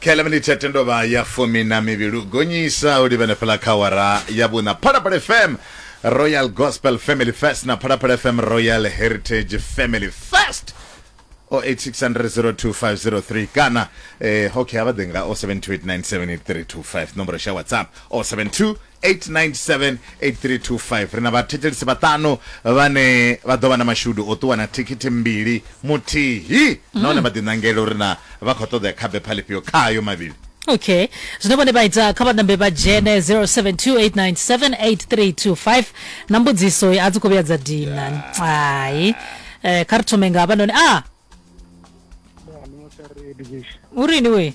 kha ḽa minithe tendo vha ya fumi na mivhili u gonyisa u livhene fhala kha wara ya vhuna phalaphala fm royal gospel family fest na phalaphala fm royal heritage family fest 0860025003 kana eh, okay avha ḓe nga 0728978325 nomboro sha whatsapp 072 8978325 ri na vhathetshelisi vhaṱanu vhane vha ḓo vha na mashudu o ṱuwa na thikhithi mbili muthihi nahone vha ḓiṋangela uri na vha khou ṱoḓea kha bepha lifhio khayo mavhili okay zwine vhone vha ita kha vha ṋambe vha dzhene 0728978325 na mbudziso a dzi khou vhuya dza dina hai eh, kha ri thome nga vhanoni a Musa Redish. u rini we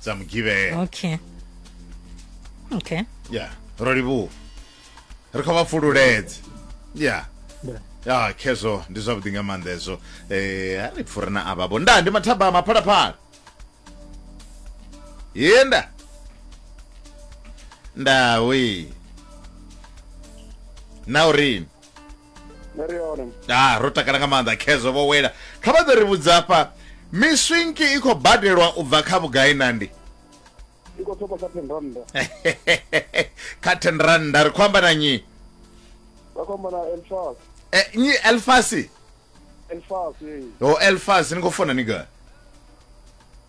dza mugivhela okay okay ya ro livhuwa ri khou vha pfululedze ya ya khezwo ndi zwavhuḓi nga maanḓa hezwo eh a ri pfure na avha vho nda ndi mathaba maphalaphala ye nda ndawi na urini Ngori hone. ah ro takala nga maanḓa khezwo vho wela kha vha ḓo ri vhudza afha miswinki i khou badelwa u bva kha vhugai nandi I khou thoma kha 10 rand. kha 10 randa ri khou amba na nyi Vha khou amba na Elfas. e, nyi elfasi Elfas. eh. o elfasi ni khou fona ni gai